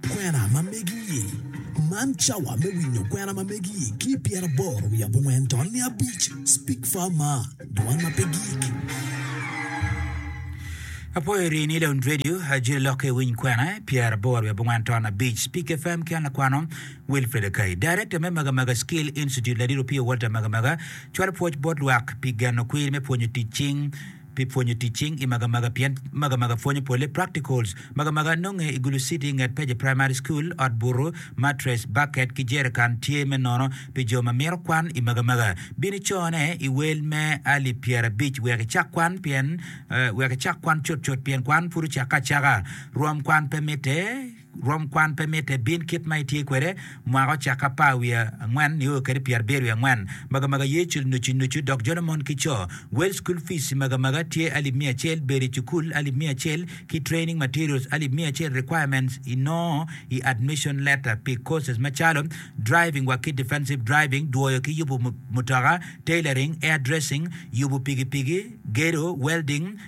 Kwena ma megi-i. Man cawa me winyo kwena ma megi-i ki i pyeraboro wiye abongwen to niya abic. Speak far maa, dwan ma pe gik. Apwoyo rii ni Lounge Radio, Ajiri Lokke Iwiny Kwena, pyeraboro wiye abongwen to abic. Speak FM ki an lakwano Wilfred Akai. Director me Maga Maga Skill Institute Ladit Opio Walter Maga Maga cwalo pwoc bot lwak pi geno kwir me pwonyo tic cing pi pwonyo tic cing i Magamaga pien Magamaga pwonyo pole practicals. Magamaga nonge i Gulu City nget Peje Primary School. Ot butu, mattress, bucket ki jerican tye me nono pi jo ma mito kwan i Magamaga. Bin icone i wel me alip pyerabic wek icak kwan pien wek icak kwan cutcut pien kwan pud ocakke acaka. Rwom kwan pe mitte. Rwom kwan pe mitte bin kit ma itye kwede mwaka ocak apar wiye angwen nio kede pyerabyer wiye angwen. Magamaga ye cul nucu nucu dok jolo mon ki co. Wel school fees magamaga tye alip miya acel, bedo i cukul alip miya acel ki training materials alip miya acel requirements inongo i admission letter pi courses macalo driving wa ki defensive driving, dwoyo ki yubu mutoka, tailoring, air dressing, yubu pigipigi, gedo, welding,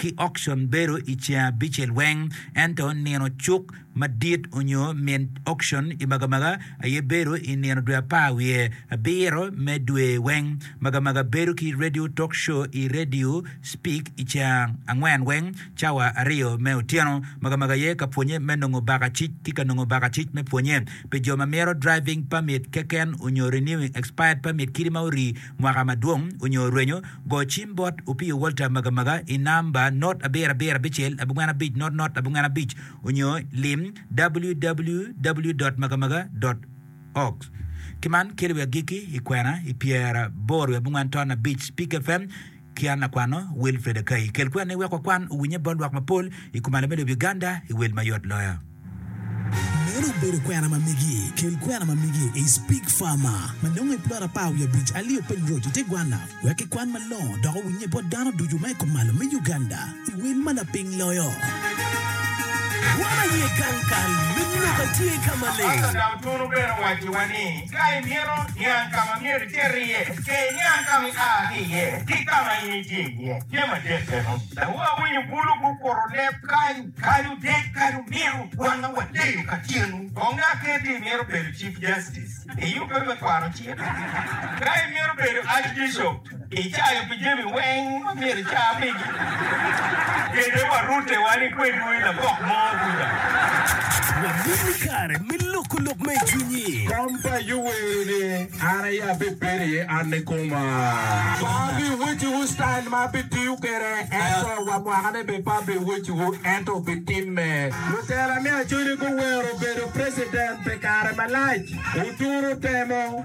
ki okcon bedo i ceng abicel weng, ento nino cuk madit onyo min okcon i magamaga aye bedo i nino dwe apar wiye abiro me dwe weng. Magamaga bedo ki radio talk show i Radio Speak i ceng angwen weng cawa aryo me otyeno. Magamaga aye ka pwonye me nongo baka cic ki ka nongo baka cic me pwonye pi jo ma mito driving permit keken onyo renewing expired permit kidi ma ori Mwaka madwong onyo rwenyo, go cim bot Opiyo Walter Magamaga i namba not abiro abiro abicel abongwen abic not not abongwen abic onyo lim www.magamaga.org. Kiman kelo wi agikki i kwena i pyera aboro wi abongwen ton abic Spik FM. Ki an akwano Wilfred Akai, kel kwer ni wek wakwan owinye bot lwak mapol i kum alembe lobo Uganda i wel mayot loyo. Meno obedo kwena ma megi. Kel kwena ma megi i Speke Farmer ma nongo i plot apar wiye abic alio piny roc i te gwanna wek ki kwan malongo dok owinye bot dano ducu ma i kom malo me Uganda i wel ma laping loyo. Gwanna aye gang kal me lok a tye ka maleng. Pastor dok tunu bene owaciwa ni. Ka imito niang ka ma myero iter iye, ce iniang ka ma ia ki iye ki ka ma in itye iye. Tye madit meno. Dawobi awinyo bulu gukuro leb kany. Kadi otek, kadi omiro, wan ma wadeyo ka tyenu, kong ngat kene ti imito bedo Chief Justice, iyubbe me kwano cik? Ka imito bedo Archbishop, Icayo pi jami weng ma myero ica pigi. Kete wa rute wan i kwedwu i labok mo kuca. Wamit ni kare me loko lok ma i cwinyi. Kom pa Ayub wero ni, An aye abibedo iye, an ni koma. Pe abiweciwu style ma abitiyo kwede, ento wa mwakane bene pe abiweciwu, ento obitimme. Lutela me Acholi guwero bedo president pi kare malac. Oturo temo.